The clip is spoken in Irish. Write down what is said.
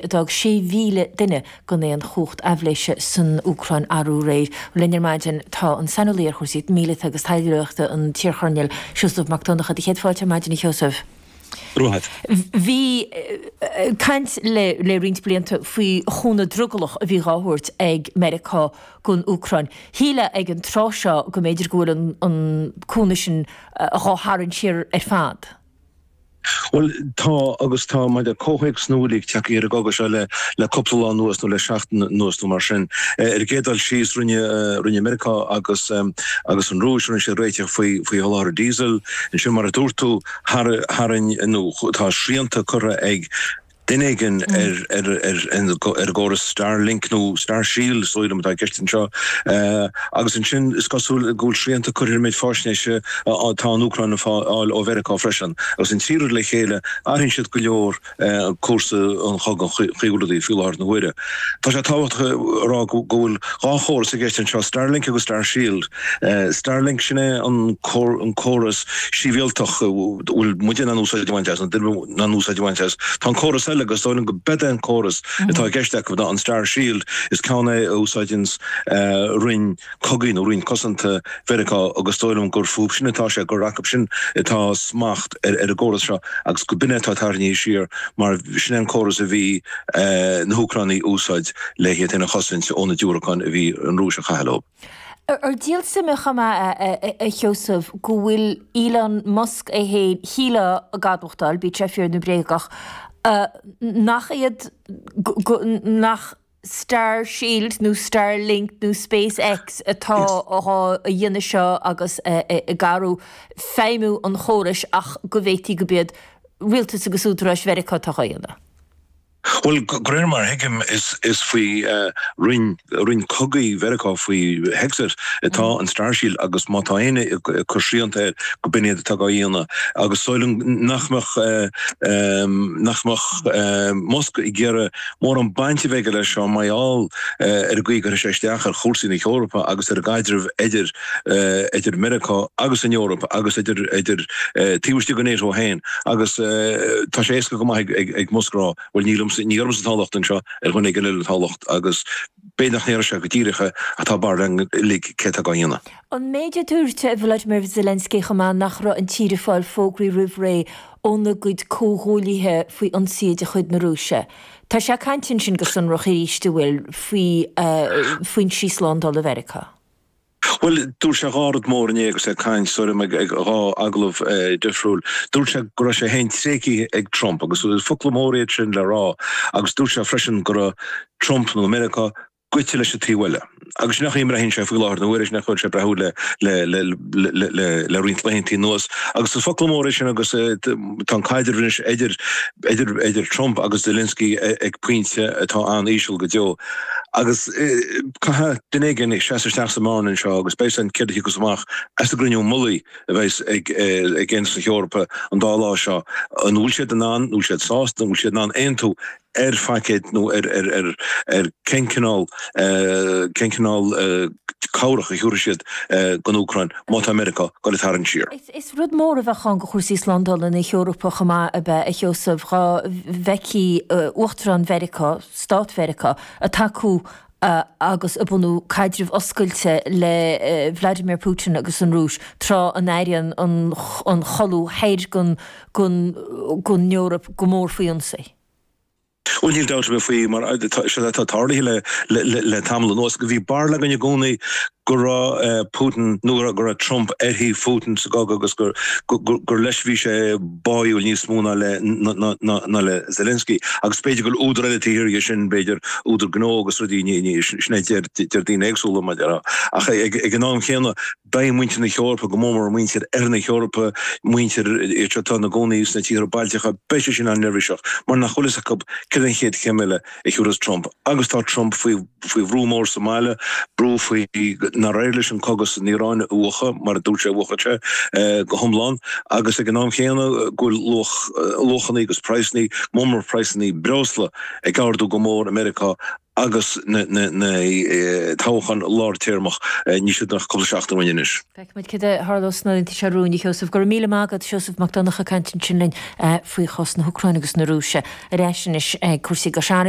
Fágadh 6,000 duine gan aon chumhacht aibhléise san Úcráin arú réir. Linn ar maidin tá an saineolaí ar chúrsaí míleata agus taidhleoireachta an t-iarchoirnéal Seosamh Mac Donncha. Do chéad fáilte ar maidin, a Sheosaimh. Bhí caint le roinnt blianta faoi chúnamh drogallach a bhí dhá thabhairt ag Meiriceá gon Úcráin. Shílfeá ag an tráth seo go mb'fhéidir go bhfuil an cúnamh sin dhá tharraingt siar ar fad. Bhuel, tá agus tá, maidir le comhthéacs na bhfuil ag teacht ar an gcogadh seo le le cúpla lá anuas nó le seachtain anuas nó mar sin. Ar an gcéad dul síos, rinne rinne Meiriceá agus agus an Rúis, rinne siad réiteach faoi faoi sholáthar diesel. Ansin, mar a dúirt tú, thar tharraing nó tá srianta curtha ag Duine éigin ar an gcóras Starlink, nó Starshield, is dóigh liom, atá i gceist anseo. Agus ansin, is cosúil go bhfuil srianta curtha ar an méid faisnéise atá an Úcráin a fháil ó Mheiriceá freisin. Agus an trí rud le chéile, athraíonn siad go leor cúrsa an chogaidh, an chaoi a bhfuil rudaí faoi láthair na huaire. Tá sé tábhachtach a rá go bhfuil dhá chóras i gceist anseo, Starlink agus Starshield. Starlink, sin é an córas sibhialtach a bhfuil muide in ann úsáid a bhaint as, na daoine in ann úsáid a bhaint as. Tá an córas eile, agus dóigh liom go b'in é an córas atá i gceist acu ná an Starshield, is ceann é a úsáideanns Roinn Cogaidh nó Roinn Cosanta Mheiriceá agus dóigh liom gur fúbu sin atá sé, gur acu sin atá smacht ar an gcóras seo agus go b'in é atá tarraingthe siar mar sin é an córas a bhí na hÚcránaigh a úsáid le hiad féin a chosaint ó na diúracáin a bhí an Rúis a chaitheamh leo. Ar díol suime é chomh maith, a Sheosaimh, go bhfuil Elon Musk é féin, shílfeá, ag admhachtáil, bíodh sé fíor nó bréagach, nach iad, nach Starshield nó Starlink nó SpaceX atá dhá dhéanamh seo agus ag gearradh feidhmiú an chórais ach go bhféadfadh go b'iad rialtas agus údaráis Mheiriceá atá dhá dhéanamh. Bhuel, de réir mar a thuigim, is faoi Roinn Roinn Cogaidh Mheiriceá, faoi Hegseth, atá an Star Shield agus má tá éinne ag cur srianta air, go b'in iad atá á dhéanamh. Agus is dóigh liom nach mbeadh Musk ag iarraidh mórán baint a bheith aige leis seo mar gheall ar an gcaoi a gcuirfeadh sé isteach ar chúrsaí na hEorpa agus ar an gcaidreamh idir idir Meiriceá agus an Eoraip agus idir taobh istigh de Nato féin agus tá sé éasca go maith ag Musk a rá, bhuel ní liomsa, ní ormsa atá an locht anseo, ar dhuine éigin eile atá an locht agus b'fhéidir nach ndéarfadh sé go díreach é ach tá barúil uilig céard atá á dhéanamh. An méid a dúirt Volodymyr Zelensky chomh maith nach raibh an tír ag fáil fógraí roimh ré óna gcuid comhghuaillithe faoi ionsaí de chuid na Rúise. Tá sé ag caint ansin go sonrach arís, an bhfuil faoi fhoinsí slándála Mheiriceá. Bhuel, dúirt sé dhá rud mhóra inné agus é ag caint, sílim, i dhá agallamh dhifriúla. Dúirt sé go raibh sé féin tréigthe ag Trump, agus is focla mór iad sin le rá, agus dúirt sé freisin go raibh Trump, nó Meiriceá, gaibhte leis an taobh eile. Agus sin é an chaoi a mbraitheann sé faoi láthair, nó ar a laghad sin an chaoi a bhfuil sé ag breathnú le roinnt laethanta anuas. Agus is focla mór iad sin agus tá an caidreamh anois idir Trump agus Zelensky ag pointe atá an-íseal go deo. Agus. Caithfidh duine éigin seasamh isteach sa mbearna anseo agus beidh sé ann céard a thiocfas amach as an gcruinniú mullaigh a bheas ag Aontas na hEorpa an dá lá seo. An bhfuil siad in ann, an bhfuil siad sásta, an bhfuil siad in ann aontú ar phaicéad nó ar cén cineál, cén cineál cabhrach a thiúrfaidh siad don Úcráin má tá Meiriceá ag dul ag tarraingt siar? Is rud mór a bheadh ann do chúrsaí slándála na hEorpa chomh maith ab ea, a Sheosaimh, dá bhfeicfeadh Uachtarán Mheiriceá, Stáit Mheiriceá, ag tacú, agus ag bunú caidreamh oscailte le Vladimir Putin agus an Rúis, tráth a n-airíonn an chuid thoir den Eoraip go mór faoi ionsaí. Bhuel, níl dabht ar bith faoi, mar séard atá tarlaithe le tamall anuas, go bhí barúil againn i gcónaí go raibh Putin, nó go raibh Trump ar thaobh Phutin, sa gcogadh agus gur leis a bhí sé báúil níos mó ná le Zelensky. Agus b'fhéidir go bhfuil údar eile taobh thiar dhe sin, b'fhéidir údar gnó agus rudaí, sin a deir daoine éagsúla, mar déarfá. Ach ag an am chéanna, beidh muintir na hEorpa, go mór mór muintir oirthear na hEorpa, muintir atá ina gcónaí sna tíortha Bailteacha, beidh siad sin an-neirbhíseach mar nach bhfuil a fhios acu céard é an chéad chéim eile. a thabharfas Trump agus tá Trump faoi bhrú mór sa mbaile, brú faoi nár éirigh leis an cogadh san Iaráin a mhúchadh, mar a dúirt sé a mhúchfadh sé, go hiomlán, agus ag an am chéanna go bhfuil luachanna agus praghsanna, mór mór praghsanna breosla, ag ardú go mór i Meiriceá agus na toghcháin lár téarma, níl siad ach cúpla seachtain uainn anois. Feicfimid céard a tharlóidh sna laethanta seo romhainn, a Sheosaimh. Go raibh míle maith agat, Seosamh Mac Donnacha ag caint ansin linn faoi chás na hÚcráine agus na Rúise. Ar ais anois ag cúrsaí Cois Fharraige.